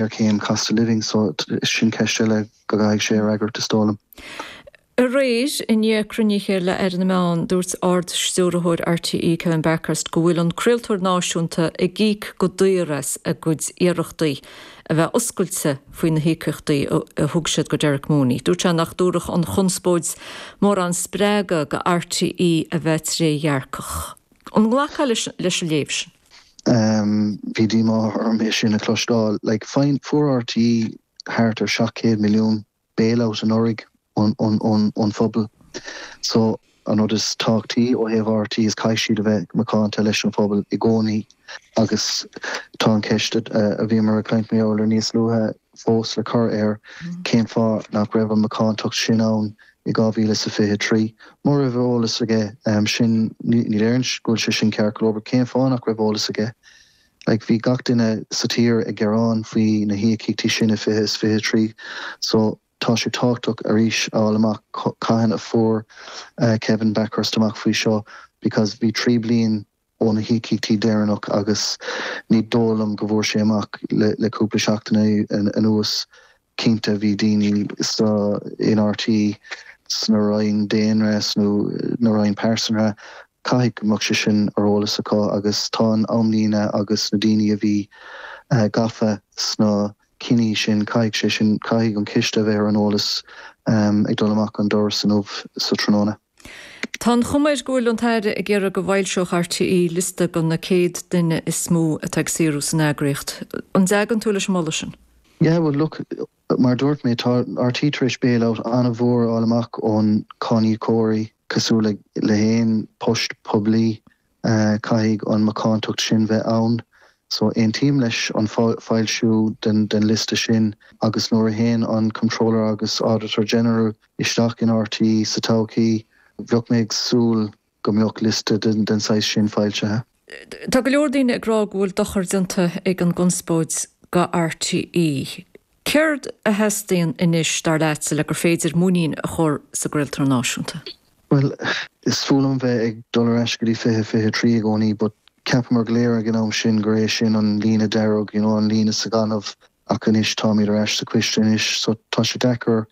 ar cé an cost of living so sin ceist eile go gcaithfidh sé a fhreagairt is dóigh liom. Aréir, i ndiaidh cruinnithe le Aire na Meán, dúirt Ard-Stiúrthóir RTÉ Kevin Bakhurst go bhfuil an craoltóir náisiúnta ag íoc go daor as a gcuid iarrachtaí a bheith oscailte faoi na híocaíochtaí a thug siad go Derek Mooney. Dúirt sé nach dtabharfadh an chonspóid mórán spreagadh go RTÉ a bheith trédhearcach. An nglacfá leis an léamh sin? Bhí díomá ormsa é sin a chloisteáil le fáil. Fuair rte thart ar 700 milliún bailout anuraidh ón phobal. So, an rud is tábhactaí ó thaobh rte is caithfidh siad a bheith macánta leis an phobal i gcónaí agus tá an ceist a bhíomar a caint mar gheall air níos luaithe, fós le cur air cén fáth nach raibh an macántacht sin ann i 2023. Mura raibh eolas aige sin, ní deirim go bhfuil sé sin ceart go leor, but cén fáth nach raibh eolas aige? Like, bhí gach duine sa tír ag gearán faoi na híocaíochtaí sin i 20 is 23, so tá sé tábhachtach arís a fháil amach cathain a fuair Kevin Bakhurst amach faoi seo because bhí trí bliain ó na híocaíochtaí deireanach agus ní dóigh liom go bhfuair sé amach le cúpla seachtain anuas. Cinnte bhí daoine sa in RTÉ, sna Roinn Daonra, sna Roinn Pearsanra, caithfidh go mbeadh sé sin ar eolas acu agus tá an amlíne agus na daoine a bhí gafa sna cinní sin, caithfidh sé sin, caithfidh an coiste a bheith ar an eolas ag dul amach an doras inniu sa tráthnóna. Tá an chuma air go bhfuil an tAire ag iarraidh go bhfoilseodh RTÉ liosta go na 100 duine is mó atá ag saothrú san eagraíocht. An dtagann tú leis an mholadh sin? Yeah, well look, mar a dúirt mé, tá rte tar éis bailout an-mhór a fháil amach ón cáiníocóirí, cosúil le haon post poiblí Caithfidh an macántacht sin bheith ann. So aontaím leis an foilsiú den liosta sin agus nuair a théann an Comptroller agus Auditor General isteach in RTÉ sa todhchaí, bheadh mé ag súil go mbeadh liosta den saghas sin foilsithe. Tá go leor daoine ag rá go bhfuil dochar déanta ag an gconspóid go RTÉ. Céard a theastaíonn anois, dar leatsa, le gur féidir muinín a chur sa gcraoltóir náisiúnta? Bhuel, is fuath liom bheith ag dul ar ais go dtí fiche fiche trí i gcónaí but cheapamar go léir ag an am sin gur é sin an líne dearg, you know, an líne sa ghaineamh ach anois táimid ar ais sa coiste anois so tá sé deacair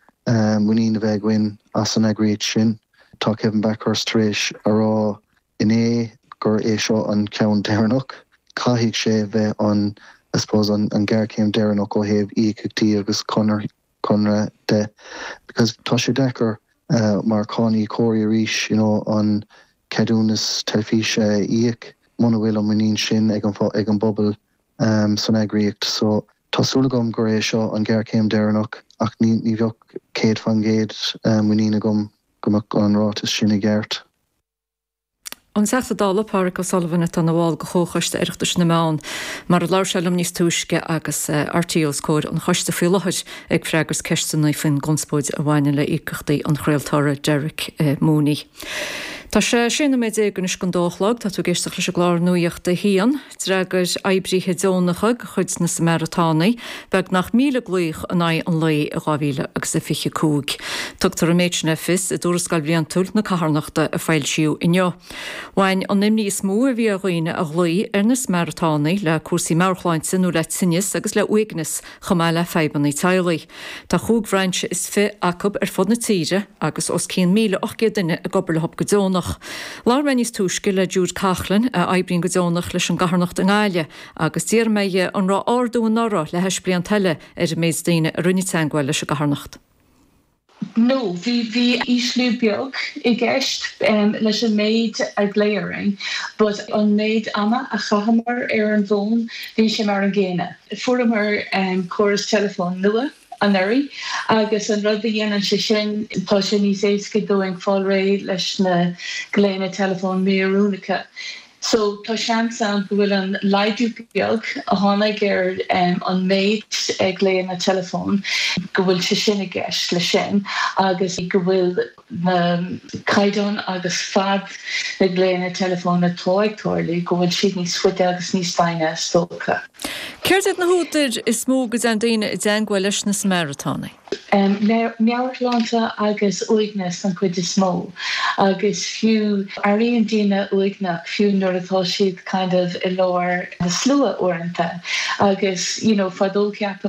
muinín a bheith againn as an eagraíocht sin. Tá Kevin Bakhurst tar éis a rá Inné gur é seo an ceann deireanach, caithfidh sé bheith an, I suppose, an ghéarchéim deireanach ó thaobh íocaíochtaí agus conradh de, because tá sé deacair mar cháiníocóirí arís, you know, an ceadúnas teilifíse a íoc muna bhfuil an muinín sin ag an bpobal san eagraíocht. So, tá súil agam gur é seo an ghéarchéim deireanach ach ní bheadh céad faoin gcéad muinín agam go mbeadh an ráiteas sin i gceart. An Teachta Dála Pádraig O'Sullivan atá ina bhall de Chomhchoiste Oireachtais na Meán, mar a labhair sé liom níos túisce agus RTÉ os comhair an choiste faoi láthair ag freagairt ceisteanna faoin gconspóid a bhaineann le íocaíochtaí an chraoltóra Derek Mooney. Tá sé sé nóiméad déag anois chun a dó a chlog. Tá tú ag éisteacht leis an gclár Nuacht a hAon. D'fhreagair oibrithe deonacha de chuid na Samaritánaigh beagnach míle glaoch in aghaidh an lae in 2025. Tugtar an méid sin le fios i dtuarascáil bhliantúil na carthanachta a foilsíodh inniu. Bhain an imní is mó a bhí ar dhaoine a ghlaoigh ar na Samaritánaigh le cúrsaí meabhairshláinte nó le tinneas agus le uaigneas chomh maith le fadhbanna teaghlaigh. Tá chúig bhrainse is fiche acu ar fud na tíre agus os cionn 1,800 duine ag obair leothub go deonach. Labhair mé níos túisce le Jude Coughlan, a oibríonn go deonach leis an gcarthanacht i nGaillimh, agus d'iarr mé dhe an raibh ardú anuraidh le hais blianta eile ar an méid daoine a rinne teagmháil leis an gcarthanacht. No, bhí, bhí ísliú beag i gceist leis an méid a glaodh orainn but an méid ama a chaitheamar ar an bhfón, bhí sé mar an gcéanna. Fuaireamar córas teileafóin nua anuraidh agus an rud a dhéanann sé sin, tá sé níos éasca dúinn fáil réidh leis na glaonna teileafóin mí-oiriúnacha. So tá seans ann go bhfuil an laghdú beag a tháinig ar an méid glaonna teileafóin, go bhfuil sé sin i gceist leis sin agus go bhfuil, na caighdeáin agus fad na nglaonna teileafóin atá ag tarlú, go bhfuil siad níos faide agus níos doimhne, is dócha. Céard iad na húdair is mó go dtéann daoine i dteagmháil leis na Samaritánaigh? Meabhairshláinte agus uaigneas den chuid is mó, agus fiú, airíonn daoine uaigneach fiú nuair atá siad kind of i lár na slua uaireanta, agus you know fadó cheapamar